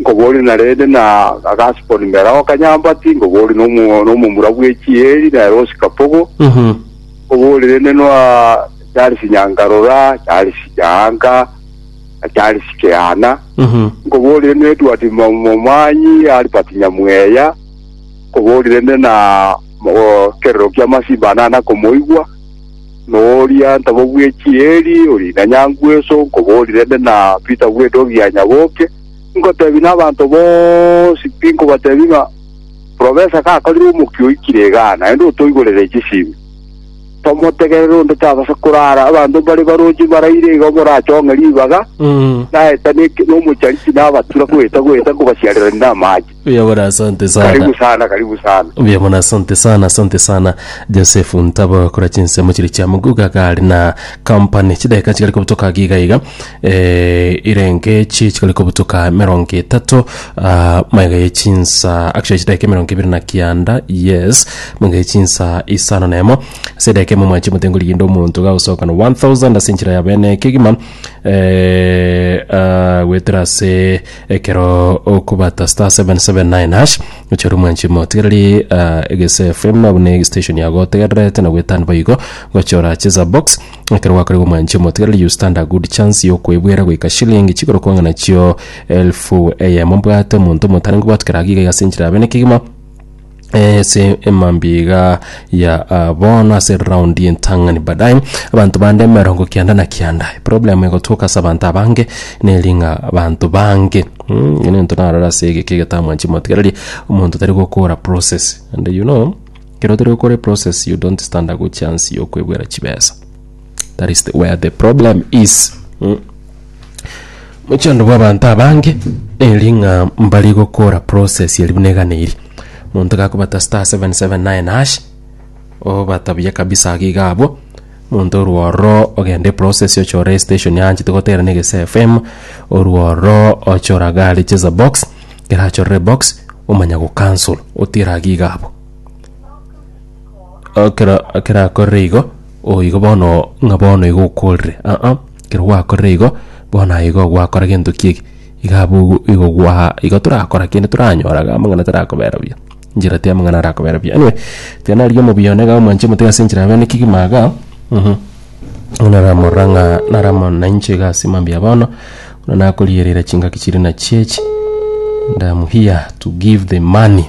Nkoboria narende na agasiponi mbere ao kanyambati, nkoboria nomo- nomomura bw'echieri nere osikapogo, nkoboria rende noa Charles Nyangarora, Charles Nyaanga, na Charles Kehana, nkoboria rende Edward Mo- Momanyi, Albert Nyamweya, nkoboria rende na mo- kerero ki'amasimba anana komoigwa, Noria ntabo bwe chieri ori na nyangweso nkobori rende na Peter bwe dogi ya nyaboke, nkotebi na abanto bonsi tinkobatebi ng'a profesa gakorire omokia oikire egana naende otoigorere chisibi. Tomotegerere onde tabasa korara abanto mbare baroche baraire igo morachong'e ribaga, naeta nomocharichi nabatura goeta goeta nkobasiarerania namache. Mbuya mono asante sana. Karibu sana, karibu sana. Mbuya mono asante sana, asante sana. Joseph Ntabo kora chinsemo chiri chia Muguga gari na company. Chideka chikari kobutoka giga iga. Eh, irenge chi chikari kobutoka merongo etato. Ah, maiga ye chinsa. Actually chideka merongo ibiri na kianda. Yes. Maiga ye chinsa isano nemo. Sedeka mo mwachi mutengo ligindo omuntu ga usoka no 1000 asinchira ya bene kigima. Eh, ah, wetera se Ekero okobata star 779 hash gochia ore omwanchi motigereri ah, egese FM nabo ne station yago otegererete na gwetani boigo gochia orache za box ekero gwakorerwa omwanchi motigereri you stand a good chance yokwebwera goika shilling chigoro kwanga nachio elfu eyemo mbwate omonto omotarenge bwatu keragigega ase enchera yabe nekegima ase emambia iga ya ah, bono ase round y'entang'ani baadaye abanto bande emerongo kianda na kianda problem egotuoka ase abanto abange neri ng'a abanto bange Mm, ng'ina ento narora ase egeke egetamwa chimotigareria omonto tari gokora process and you know kero tari gokora process you don't stand a good chance yokwebwera chibesa that is the, where the problem is mm. mochando bwa abanto abange eri ng'a mbari gokora process eri buna egana eri monto gakobata star 779 hash obatabuya kabisa iga iga abwo monto orworo ogende process ochore station yanchete gotera na egese fm orworo ochora gari cheza box gerachorere box omanya gocancel otira iga iga abwo okera okera akorire igo Oo igo bono, ng'a bono igo okorire? Aa, ekero gwakorire igo, bono aye igo gwakora gento ki'eki. Iga abwo igo gwa igo torakora kende toranyoraga amang'ana tarakobera buya. Njira tia amang'ana arakobera buya. Anyway, tiga narigie omobia one iga omwanche motiga ase enchera yabeene kegima igaa, mhm. Buna naramorora ng'a naramo nainche iga ase mambia bono, buna nakorierera chingaki chiria nachio echi, and am here to give the money.